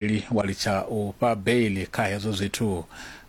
Li wa litsha u fha beiḽi kha hezwo zwithu.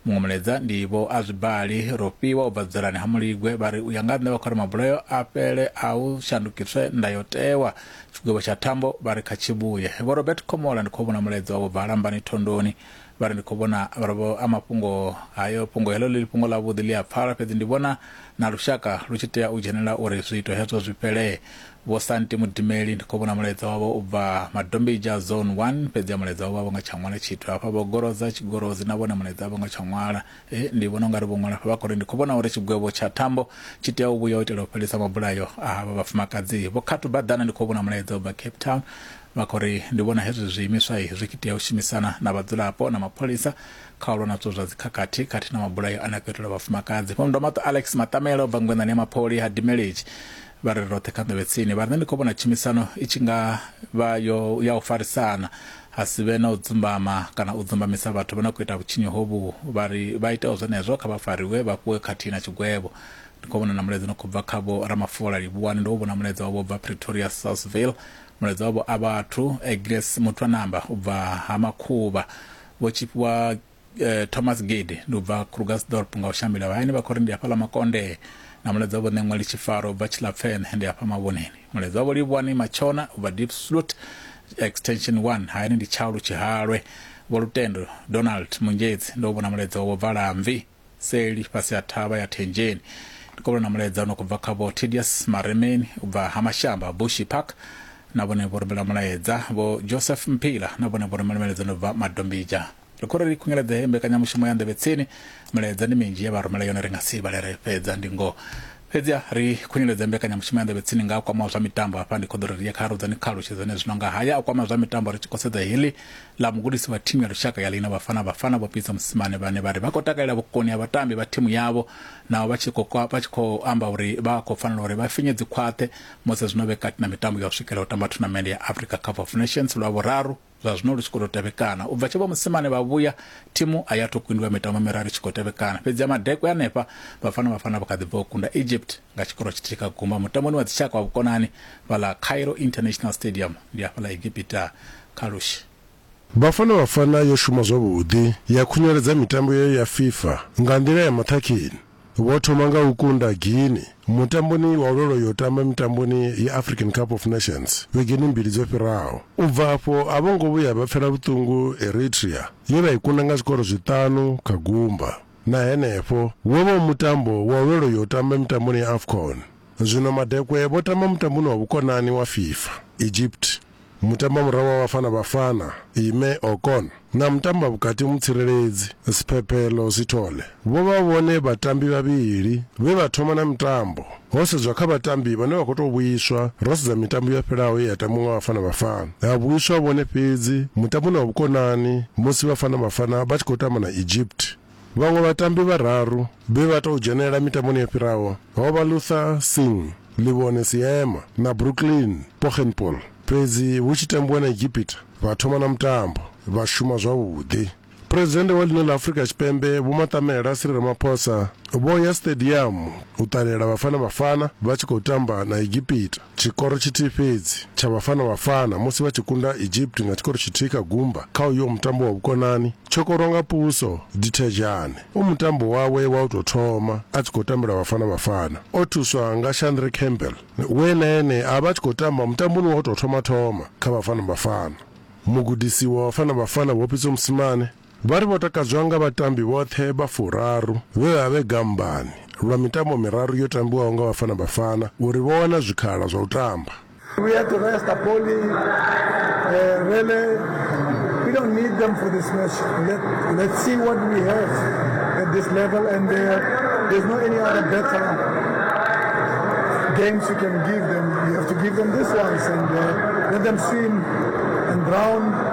Muṅwe mulaedza ndi Vho Azwibali Rofhiwa u bva Dzolani ha Muligwe vha ri u ya nga ha nṋe vha khou ri mabulayo a fhele a hu shandukiswe ndayotewa. Tshigwevho tsha thambo vha ri kha tshi vhuye. Vho Robert Khomola ndi khou vhona mulaedza wavho bva Lambani Thondoni vha ri ndi khou vhona vho a mafhungo hayo fhungo heḽo ḽi fhungo ḽavhuḓi ḽi a pfala fhedzi ndi vhona na lushaka lu tshi tea u dzhenelela uri zwiito hezwo zwi fhelee. Vho Santi Mudimeli, Ndi khou vhona mulaedza wavho u bva Madombidzha Zone One, fhedzi a mulaedza u vha vho nga tsha ṅwala tshithu hafha. Vho Goroza Tshigorozi, Na vhone mulaedza a vho ngo tsha ṅwala. He, ndi vhona u nga ri vho ṅwala hafha vha khou ri, Ndi khou vhona uri tshigwevho tsha thambo tshi tea u vhuya u itela u fhelisa mabulayo a havha vhafumakadzi. Vho Khathu Badana, Ndi khou vhona mulaedza u bva Cape Town, vha khou ri, Ndi vhona hezwi zwiimiswa zwi tshi tea u shumisana na vhadzulapo na mapholisa kha u lwa na zwithu zwa dzikhakhathi khathihi na mabulayo ane a khou itelwa vhafumakadzi. Vho Ndomaṱo Alex Maṱamela, u bva ngwenḓani ya Mapholi ha Dimelezi, vha re roṱhe kha ḓovhe tsini vha rine ndi khou vhona tshumisano i tshi nga vha yo ya u farisana ha si vhe na u dzumbama kana u dzumbamisa vhathu vha na khou ita vhutshinyi hovhu vha ri vha iteho zwenezwo kha vha fariwe vha fhiwe khathihi na tshigwevho ndi khou vhona na mulaedza no khou bva kha vho ramafola livhuwani ndo vhona mulaedza wavho bva pretoria southville mulaedza wavho a vhathu egles muthu a namba u bva ha makhuvha vho tshifhiwa eh, thomas gede ndi u bva krugersdorp nga u shambela vhayani vha khou ri ndi hafhaḽa makonde na mulaedza wavho ṋeṅwali tshifaro u bva tshilapfene ndi hafha mavhoneni mulaedza wavho livhuwani matshona u bva deep slut extension 1 hayani ndi tshaulu tshihalwe vho lutendo donald munjedzi ndo vhona mulaedza wavho bva lamvi seli fhasi ha thavha ya thendzheni ndi khou vhona na mulaedza u no khou bva kha vho tedius maremeni u bva ha mashamba bushi park na vhone vho rumela mulaedza vho joseph mpila na vhone vho rumela mulaedza no bva madombija ri khou ri ri khungeledze heyi mbekanyamushumo ya nḓevhe tsini milaedza ndi minzhi ye vha rumela yone ri nga si vhale ri fhedza ndi ngoho fhedziha ri khunyeledze mbekanyamushumo ya nḓevhe tsini nga a kwamaho zwa mitambo hafha ndi khoḓo ri ri ye kha rudzani kha alutshedzane zwino nga haya a kwama zwa mitambo ri tshi khou sedza heḽi ḽa mugudisi wa thimu ya lushaka ya lina vhafana vhafana vho pitsa musimane vhane vha ri vha khou takalela vhukoni ha vhatambi vha thimu yavho naho vha tshi khou amba uri vha khou fanela uri vha finye dzikhwaṱhe musi zwino vhe kati na mitambo ya u swikela u tamba thunamende ya africa cup of nations lwa vhuraru Zwa zwino lu tshi khou tou tevhekana. U bva tshe vha Mosimane vha vhuya, thimu a i athu kundwa mitambo miraru i tshi khou tevhekana. Fhedzi ha Madekwe hanefha, Bafana Bafana vho kha ḓi bva u kunda Egypt nga tshikoro tshithihi kha gumba mutamboni wa dzitshaka wa vhukonani fhaḽa Cairo International Stadium, ndi hafha ḽa Egipita kha Lush. Bafana Bafana yo shuma zwavhuḓi ya khunyeledza mitambo yayo ya FIFA nga nḓila ya maṱhakheni. Vho thoma nga u kunda Guinea mutamboni wa u lwela u yo tamba mitamboni ya African Cup of Nations vhegeni mbili dzo fhiraho. U bva afho a vho ngo vhuya vha pfela vhuṱungu Eritrea ye vha i kunda nga zwikoro zwiṱanu kha gumba. Na henefho, wo vha u mutambo wa u lwela u yo tamba mitamboni ya Afcon. Zwino Madekwe vho tamba mutamboni wa vhukonani wa FIFA, Egypt. Mutamba murahu wa Bafana Bafana, Ime Okon, na mutamba vhukati mutsireledzi, Sphephelo Sithole, vho vha vhone vhatambi vhavhili vhe vha thoma na mitambo. Ho sedzwa kha vhatambi vhane vha khou tou vhuiswa, ro sedza mitambo yo fhelaho ye ya tambiwa nga Bafana Bafana, ha vhuiswa vhone fhedzi mutamboni wa vhukonani musi Bafana Bafana vha tshi khou tamba na Egypt. Vhaṅwe vhatambi vhararu vhe vha tou dzhenelela mitamboni yo fhiraho ho vha Luther Singh, Liwone Seema na Brooklyn Poggenpoel. Fhedzi hu tshi tambiwa na Egipita, vha thoma na mutambo vha shuma zwavhuḓi. Phresidennde wa ḽino ḽa Afrika Tshipembe Vho Matamela Cyril Ramaphosa vho ya siṱediamu u ṱalela Bafana Bafana vha tshi khou tamba na Egipita. tshikoro tshithihi fhedzi tsha Vhafana Vhafana musi vha tshi kunda Egypt nga tshikoro tshithihi kha gumba kha uyo mutambo wa vhukonani tsho korwa nga Puso Dithejane. U mutambo wawe wa u tou thoma a tshi khou tambela Vhafana Vhafana. O thuswa nga Shandre Campbell we na ene a vha a tshi khou tamba mutamboni wa u tou thoma-thoma kha Vhafana Vhafana. Mugudisi wa Vhafana Vhafana Vho Pitso Mosimane Vha ri vho takadzwa nga vhatambi vhoṱhe vha furaru vhe vha vhe gambani lwa mitambo miraru yo tambiwaho nga Bafana Bafana uri vho wana zwikhala zwa u tamba. We had to rest Apoli, uh, Rele. We don't need them for this match. Let, let's see what we have at this level, and uh, there's no any other better games you can give them. You have to give them this ones and uh, let them swim and drown.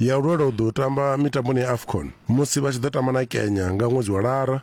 ya u lwela u ḓo tamba mitamboni ya Afcon musi vha tshi ḓo tamba na Kenya nga ṅwedzi wa Lara.